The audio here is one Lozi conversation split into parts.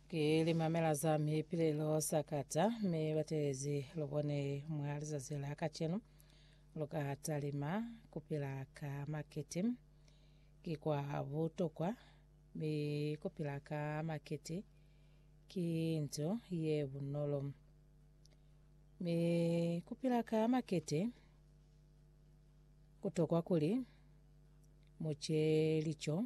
Ki limamela za mi pili lo sakata, mi batelezi lu bone mwa lizazi la kacenu. Lu ka talima kupila ka makiti. Ki kwa butokwa mi kupila ka makiti ki nto ye bunolo. Mi kupila ka makiti kutokwa kuli mu ce lico.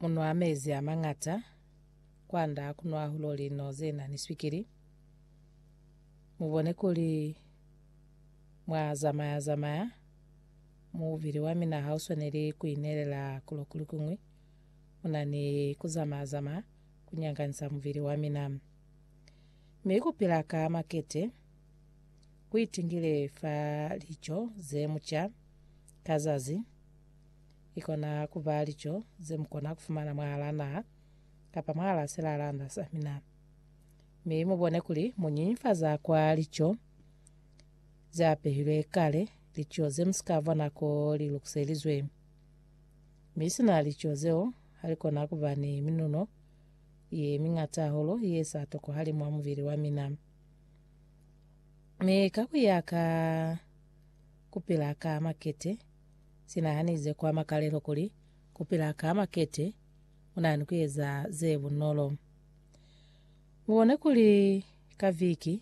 Munwa mezi a mañata kwanda kunwa hahulu lino ze na ni swikili. Mubone kuli mwa zamaya zamaya. Mubili wa mina ha u swaneli ku inelela kulo kuli kuñwi. Mu na ni ku zamaya zamaya ku nyanganisa mubili wa mina. Mi ku pila ka makete ku itingile fa lico ze mu ca ka zazi. Ikona kuba lico zemukona kufumana mwahalaa naha kapa mwahalaa silalanda samina. Mi mubone kuli munyinyinfaza kwa lico zeapehilwe kale, lico zemusika vwa nako lilukiselizwe. Mi sina lico zeo, halikona kuba ni minuno yemiñata hahulu yesa tokohali mwa mubili wamina. Mi ka kuya ka kupila ka makete, Si nahanize kwa makalelo kuli ku pila ka makete ku na ni ku eza ze bunolo. Mu bone kuli ka viki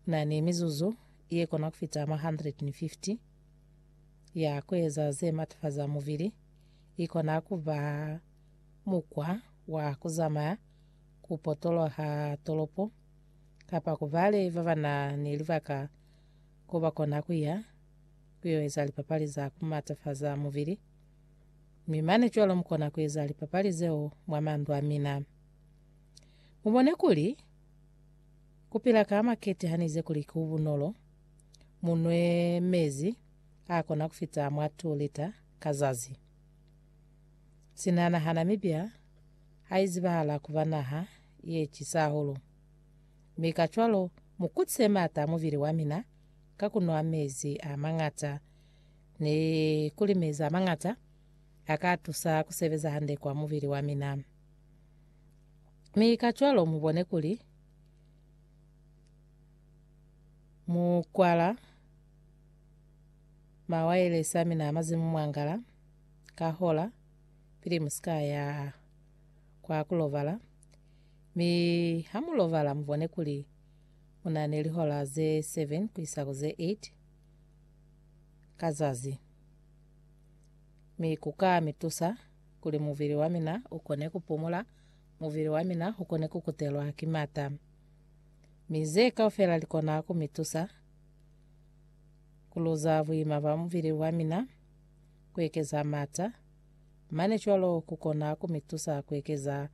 ku na ni mizuzu ye kona ku fita mwa 150 ya ku eza ze matafaza mubili. I kona ku ba mukwa wa ku zamaya, ku potoloha tolopo, kapa ku bale ba ba na ni libaka ko ba kona ku ya. ku yo eza lipapali za ku matafaza mubili, mi mane cwalo mu kona ku eza lipapali zeo mwa mandu a mina. Mu bone kuli, ku pila ka makete ha nize kuli ku bunolo, mu nwe mezi a kona ku fita mwa 2 lita ka zazi. Sina naha Namibia ha i zibahala ku ba naha ye cisa hahulu, mi kacwalo mu kutise maata a mubili wa mina ka ku nwa mezi a mañata ni ku li mezi a mañata a ka tusa ku sebeza hande kwa mubili wa mina. Mi kacwalo mu bone kuli mu kwala mawayelesi a mina a mazimu mwangala ka hola pili mu si ka ya kwa ku lobala. Mi ha mu lobala mu bone kuli u na ni lihola ze 7 ku isa ku ze 8 ka zazi, mi ku ka mi tusa kuli mubili wa mina u kone ku pumula, mubili wa mina u kone ku kutelwa ki mata. Mi ze kaufela li kona ku mi tusa ku luza buima bwa mubili wa mina, ku ekeza mata, mane cwalo ku kona ku mi tusa ku ekeza